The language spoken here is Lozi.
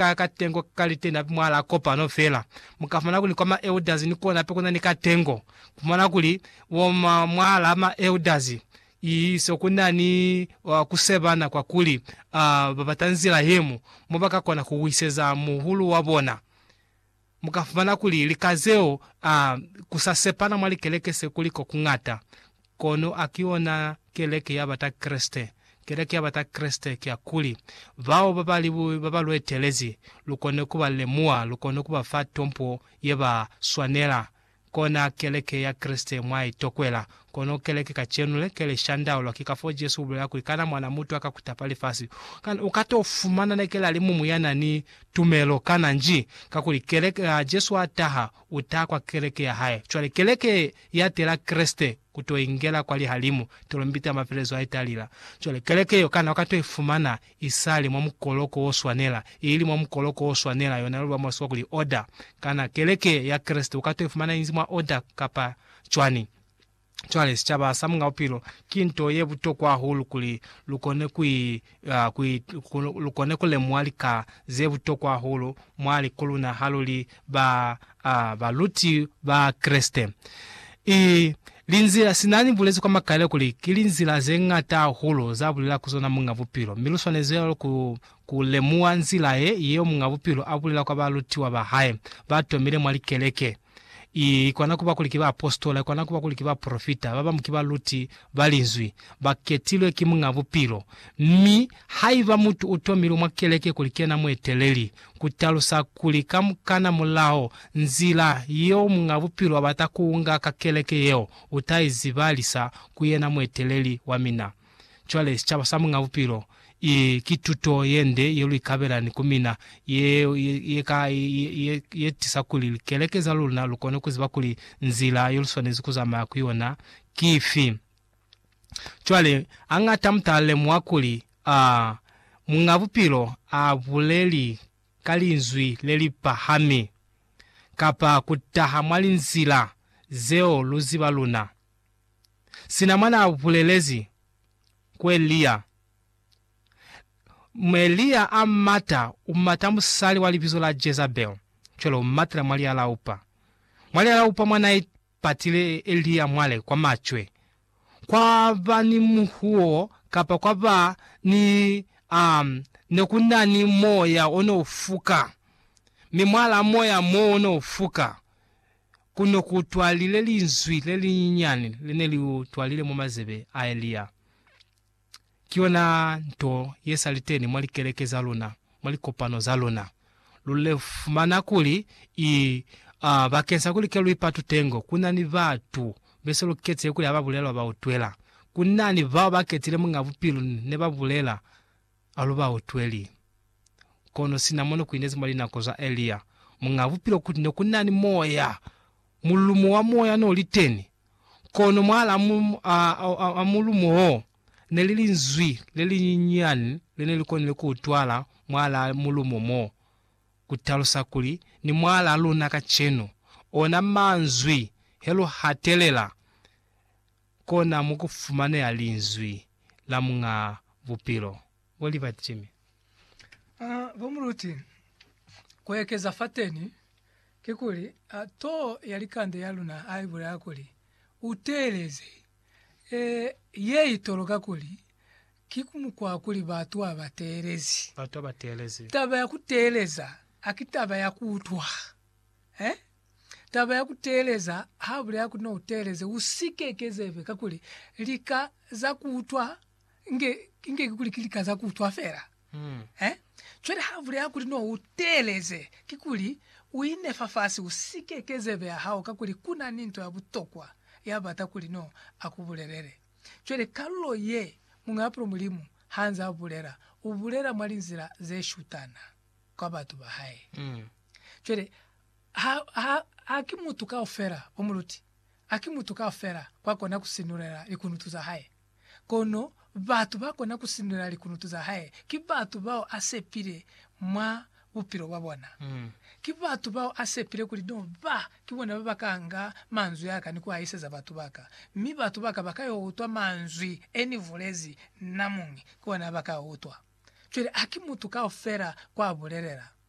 ka katengo ka litena hape mwahalaa kopano fela. Mu ka fumana kuli kwa ma elders ni kona hape kuna ni katengo. Ku fumana kuli bo ma, mwahalaa ma elders, i so kuna ni uh, ku sebana kwa kuli uh, ba bata nzila yemu mo ba ka kona ku wiseza muhulu wa bona. Mu ka fumana kuli lika zeo a ku sa sepana mwa likeleke se kuli ko ku ñata. Kono a ki yona keleke ya ba ta Kreste. Keleke ya ba ta Kreste ki ya kuli, bao ba ba li ba ba lu etelezi, lu kone ku ba lemuha, lu kone ku ba fa tompo ye ba swanela, Kona keleke ya Kreste mwa i tokwela. Kono keleke kacenu le, ke li shandaulwa. Ki ka fo Jesu ubulela kuli, Kana Mwana mutu aka kutapa lifasi? Kana uka to fumana ne keli alimumu ya na ni tumelo? Kana nji? Kakuli keleke, ha Jesu a taha, u taha kwa keleke ya hae. Cwale keleke ye, ya tela Kreste. ku to ingela kwa lihalimu, tolombita ya mafelezo ha italila. Cwale, keleke yeo kana u ka to i fumana i sa li mwa mukoloko wo swanela? I li mwa mukoloko wo swanela, yona luli lwa mwa Lisiwa kuli oda. Kana keleke ya Kreste u ka to i fumana inzi mwa oda kapa cwani? Cwale, sicaba sa Mungabupilo, ki nto ye butokwa hahulu kuli lu kone ku i la ku lu kone ku lemuha lika ze butokwa hahulu mwa liku luna ha lu li ba a baluti ba Kreste. I linzila, sina ni bulezi kwa makaile kuli ki linzila ze ñata hahulu za bulela ku zona Muñ'a Bupilo, mi lu swanezi cwalo ku ku lemuha nzila ye, yeo Muñ'a Bupilo a bulela kwa balutiwa ba hae ba tomile mwa likeleke. I kona kuba kuli ki baapositola, i kona kuba kuli ki baprofita, ba bañwi ki baluti ba Linzwi, ba ketilwe ki Muñ'a Bupilo. Mi haiba mutu u tomilwe mwa keleke kuli ki yena mueteleli, ku talusa kuli kamukana mulaho nzila yeo Muñ'a Bupilo a bata ku unga ka keleke yeo, u ta i zibalisa ku yena mueteleli wa mina. Cwale, sicaba sa Muñ'a Bupilo, i, ki tuto ye nde ye lu ikabelani ku mina, ye, ye, ye ka, ye, ye, ye tisa kuli likeleke za luna lu kone ku ziba kuli nzila yo lu swanezi ku zamaya ku yona ki ifi. Cwale, hañata mu ta lemuha kuli, a, Muñ'a Bupilo a buleli ka linzwi le li pahami, kapa ku taha mwa linzila zeo lu ziba luna. Sina mwa n'a bulelezi ku Elia, mi Elia a mata, u mata musali wa libizo la Jezabele, cwale u matela mwa lialaupa. Mwa lialaupa mwa n'a ipatile Elia mwale kwa macwe, kwa ba ni muhuo kapa kwa ba ni, um, ne ku na ni moya o n'o fuka, mi mwalaa moya m'o o n'o fuka. ku no ku twalile linzwi le linyinyani le ne li utwalile mwa mazebe a Elia. Ki yona nto ye sa li teni mwa likeleke za luna, mwa likopano za luna. Lu le fumana kuli i a bakeng sa kuli ke lu ipatu tengo, ku na ni batu be se lu ketile kuli ha ba bulelwa ba utwela. Ku na ni bao ba ketile munga bupilu ne ba bulela alubautweli. Kono sina mo nekuinezi mwa linako za Elia, Muñaa Bupilo ukuti nekunani Moya, mulumo wa Moya noliteni, kono mwaalaa mulumo oo neli linzwi lelinyinyani lenelikonile kuutwala mwaalaa mulumo mo, kutalusa kuli, ni mwaalaa luna kacenu. Ona manzwi, he luhatelela. Kona mo ku fumaneha Linzwi la Muñ'a Bupilo. Bo Liberty Jimmy. A, bo Muluti, ku ekeza fateni, kikuli, a, too ya likande ya luna ha i bulela kuli, U teeleze. E, ye i toloka kuli, ki ku mukwa kuli batu ha ba teelezi. Batu ha ba teelezi. Taba ya ku teeleza, haki taba ya ku utwa. Eh? Taba ya kuteeleza, haabulela kuli nouteeleze, usike kezebe, kakuli lika za kuutwa nge, nge kikuli ki lika za kuutwa feela. Mm. Eh? Cwale haabulela kuli nouteeleze, kikuli uinefa fasi, usike kezebe ya hao, kakuli kuna ni nto ya butokwa yabata kuli no akubulelele. Cwale kalulo ye, muñaapulo Mulimu haanze abulela, ubulela mwa linzila zeshutana. kwa batu ba hae. Cwale, ha, ha, ha ki mutu kaufela o mu luti, ha ki mutu kaufela kwa kona ku sinulela likunutu za hae. Kono batu ba kona ku sinulela likunutu za hae ki batu bao a sepile mwa bupilo bwa bona. Ki batu bao a sepile kuli no ba Ki bona ba ba ka nga manzwi a ka ni ku a iseza batu ba ka, mi batu ba ka ba ka yo utwa manzwi e ni bulezi na muñi, ki ona ba ka a utwa. Cwale, haki mutu kaufela ku a bulelela.